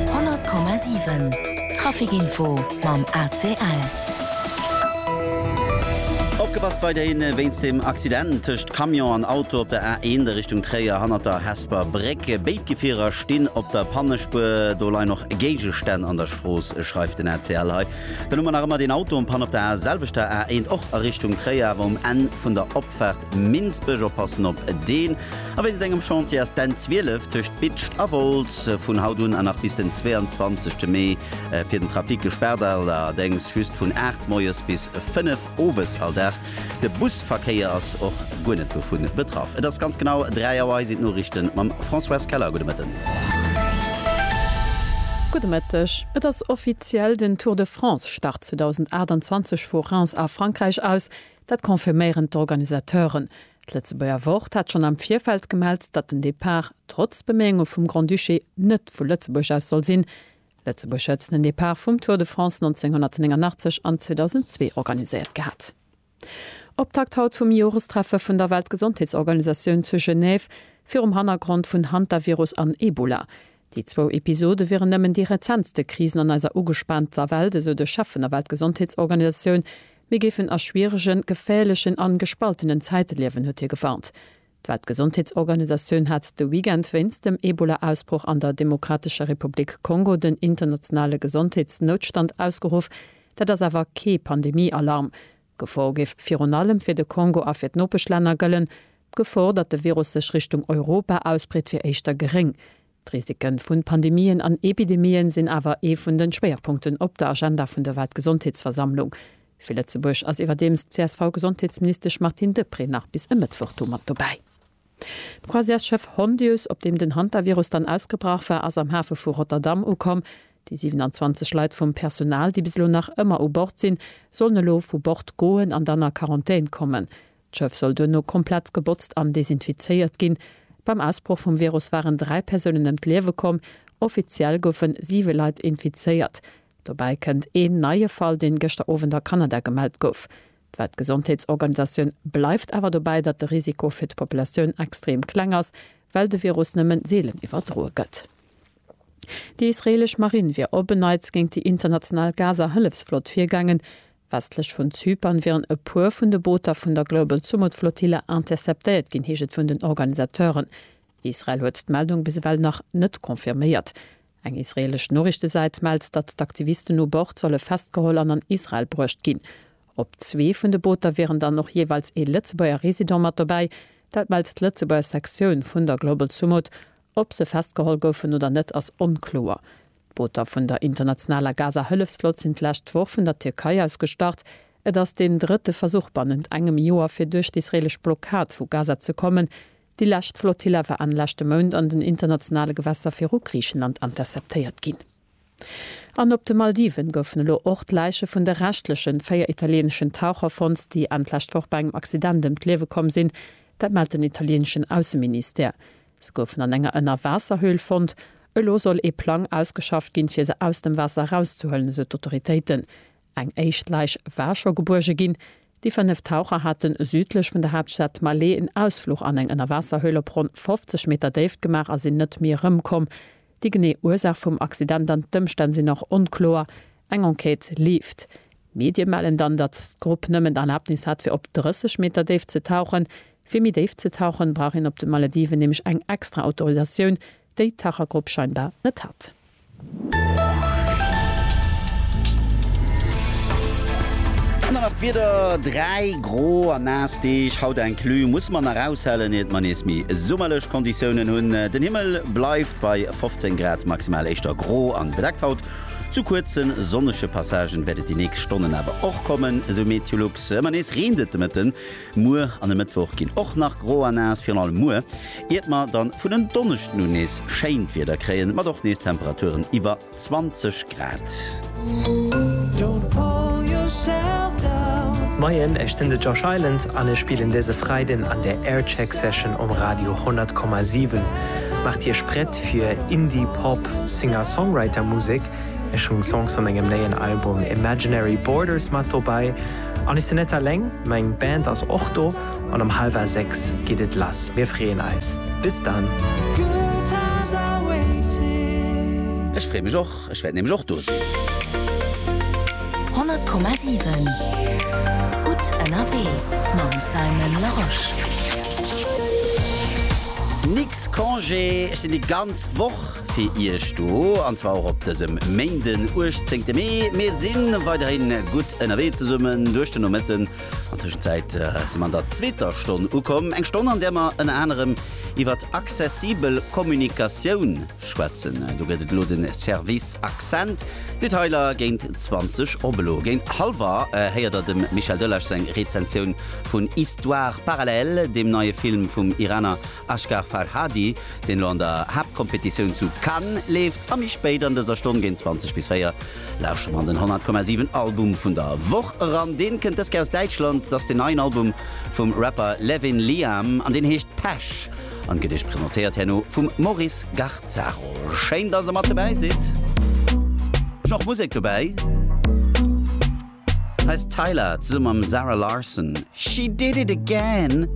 100,7 Traficinfo mam ACL. Opgepasst weiderhin wéinst dem Accident tëscht Camion an Auto op der A1 a Richtung Tréier hannert der Hesper Bréck. Béid Gefierer stinn op der Pannespuer. Do leien och Géigestänn an der Strooss, schreift den ACL hei. Dann hu mer nach ëmmer deen Auto en Panne op der selwechter A1, och a Richtung Tréier, awer um Enn vun der Opfaart Minsbech. Oppassen op deen. A wéinst engem Chantier ass d'N 12 tëscht Bitscht a Wolz vun haut un a nach bis den 22 Mee fir den Trafic gespaart. Allerdéngs just vun 8 moies bis 5 owes all Dag. De Busverkéier ass och guer net dovu betraff. Et ass ganz genau 3 Auer. Hei sinn d'Noriichten mam Françoise Keller. Gudde Mëtten. Gudde Mëtteg. Et ass offiziell, den Tour de France start 2028 vu Reims a Frankräich aus. Dat confirméieren d'Organisateuren. D'Lëtzebuerger Wort hat schonn am Virfeld gemellt, datt den Depart, trotz Beméiunge vum Grand-Duché, net vu Lëtzebuerg aus soll sinn. Lëtzebuerg huet den Depart vum Tour de France 1989 an 2002 organiséiert gehat. Optakt haut vum Jorestreffe vun der Weltgesondheetsorganisatioun zu Genève virum Hannergrond vun Hantavirus an Ebola. Déi zwou Episode wieren nëmmen déi rezentste Krisen an eiser ugespaanter Welt, esou de Chef vun der Weltgesondheetsorganisatioun, Mir géifen a schwieregen, geféierlechen an gespaltenen Zäite liewen, huet hie gewarnt. D'Weltgesondheetsorganisatioun hat de Weekend wéinst dem Ebola-Ausbroch an der Demokratescher Republik Kongo den internationale Gesondheetsnoutstand ausgeruff. Dat ass awer kee Pandemie-Alarm. D'Gefor géif virun allem fir de Kongo a fir d'Nopeschlänner gëllen. D'Gefor, datt de Virus sech Richtung Europa ausbreet, wier éischter geréng. D'Risiken vun Pandemien an Epidemien sinn awer ee vun den Schwéierpunkten op der Agenda vun der Weltgesondheetsversammlung. Fir Lëtzebuerg ass iwwerdeems d'CSV-Gesondheetsministesch Martine Deprez nach bis e Mëttwoch do mat dobäi. D'Croisièresschëff Hondius, op deem den Hantavirus dann ausgebrach war, ass am Hafe vu Rotterdam ukomm. Déi 27 Leit vum Personal, déi bis elo nach ëmmer u Bord sinn, sollen elo vu Bord goen an dann a Quarantän kommen. D'Schëff soll duerno komplett gebotzt an desinfizéiert ginn. Beim Ausbroch vum Virus waren dräi Persounen ëm d'Liewe komm. Offiziell goufe siwe Leit infizéiert. Dobäi kënnt een neie Fall, deen gëschter Owend a Kanada gemellt gouf. D'Weltgesondheetsorganisatioun bleift awer dobäi, datt de Risiko fir d'Populatioun extrem kleng ass, well de Virus nëmme seelen iwwerdroe gëtt. Déi israeelesch Marinn wier op en Neits géint déi international Gaza-Hëllefsflott virgaangen. Westlech vun Zypern wieren e puer vun de Booter vun der Global Sumud Flotille interceptéiert ginn, heescht et vun den Organisateuren. Israel huet d'Meldung bis ewell nach net confirméiert. Eng israeelesch Noriichtesäit mellt, datt d'Aktivisten u Bord solle festgeholl an an Israel bruecht ginn. Op zwee vun de Booter wieren dann och jeeweils ee Lëtzebuerger Resident mat dobäi. Dat mellt d'Lëtzebuerger Sektioun vun der Global Sumud Ob se festgeholl goufen oder net ass onkloer. D'Booter vun der internationaler Gaza-Hëllefsflott sinn d'lescht Woch vun der Tierkei aus gestart. Et ass deen drëtte Versuch bannent engem Joer fir duerch d'israelesch Blockad vu Gaza ze kommen. Déi lescht Flottilla war Enn leschte Mount an den internationale Gewässer viru Griichenland interceptéiert ginn. An op de Maldiven goufen elo och d'Läiche vun de reschtlechen véier italieneschen Taucher fonnt, déi Enn d'lescht Woch bei engem Accident ëm d'Liewe komm sinn. Dat mellt den italieneschen Ausseministère. Se goufen an enger Ënnerwaasserhöhl fonnt. Elo soll ee Plang ausgeschafft ginn, fir se aus dem Waasser erauszehuelen, esou d'Autoritéiten. Eng éischt Läich war scho gebuerge ginn. Déi fënnef Taucher hate südlech vun der Haaptstad Malé en Ausfluch an eng Ënnerwaasserhöhl op ronn 50 Meter Déift gemaach a sinn net méi erëmkomm. Déi genee Ursaach vum Accident an d'Ëmstänn sinn nach onkloer. Eng Enquête leeft. Medie mellen dann, datt d'Grupp nëmmen d'Erlabnis hat fir op 30 Meter Déift ze tauchen. Fir méi déif ze tauchen, brauch een op de Malediven nämlech eng extra Autorisatioun, déi d'Tauchergrupp scheinbar net hat. An dann nach d'Wieder, Dräi gro a naass Deeg haut inclus musse mer nach aushalen, iert mer nees méi summerlech Konditiounen hunn. Den Himmel bleift bei 15 Grad, maximal éischter gro an bedeckt haut. Zu kuerze sonnege Passagen wäert et déi nächst Stonnen awer och kommen, esou Meteolux. Ëmmer nees reent et de Mëtten, Muer an e Mëttwoch ginn och nach gro a naass, virun allem muer, iert mer dann vun en Donneschden un nees schéint Wieder kréien, mat och nees Temperaturen iwwer 20 Grad. Moien, ech sinn de Josh Island an ech spillen dëse Freiden an der Aircheck Session um Radio 100,7. Maacht Iech prett fir Indie Pop Singer-Songwriter Musek. Ech hunn Songs vu mengem néien Album Imaginary Borders mat dobäi. An ech sinn net alleng, meng Band ass och do an um halwer 6 geet et lass. Mir freeën eis. Bis dann! Ech free mech och, ech wäert nämlech och do sinn. 100,7 Gutt ënnerwee mam Simon Larosche. Nix Congé, ech sinn déi ganz Woch. fir Iech do, an zwar och op dësem Méinden, 18 Mee. Mir si weiderhin gutt ënnerwee zesummen duerch den Nomëtten. An Tëschenzäit si mer an der zweeter Stonn ukomm, eng Stonn, an där mer ënner anerem iwwert accessibel Kommunikatioun schwätzen. Do gëtt et elo de Service Accent. Detailer géint 20 op. Elo géint hallwer héiert Der dem Michel Delage seng Rezensioun vun Histoires parallèles, deem neie Film vum Iraner Ashgar Farhadi, deen elo an der Haaptkompetitioun zu Cannes leeft, a méi spéit an dëser Stonn géint 20 bis 4 lauschtert mer an den 100,7 Album vun der Woch eran. Deen kënnt dës Kéier aus Däitschland, et ass den neien Album vum Rapper Levin Liam an deen heescht Pesch an gëtt iech presentéiert herno vum Maurice Garzaro. Schéin dass der mat dobäi sidd. Ech hunn och Musek dobäi, hei ass Tyla zesummen mam Zara Larsson, She Did It Again.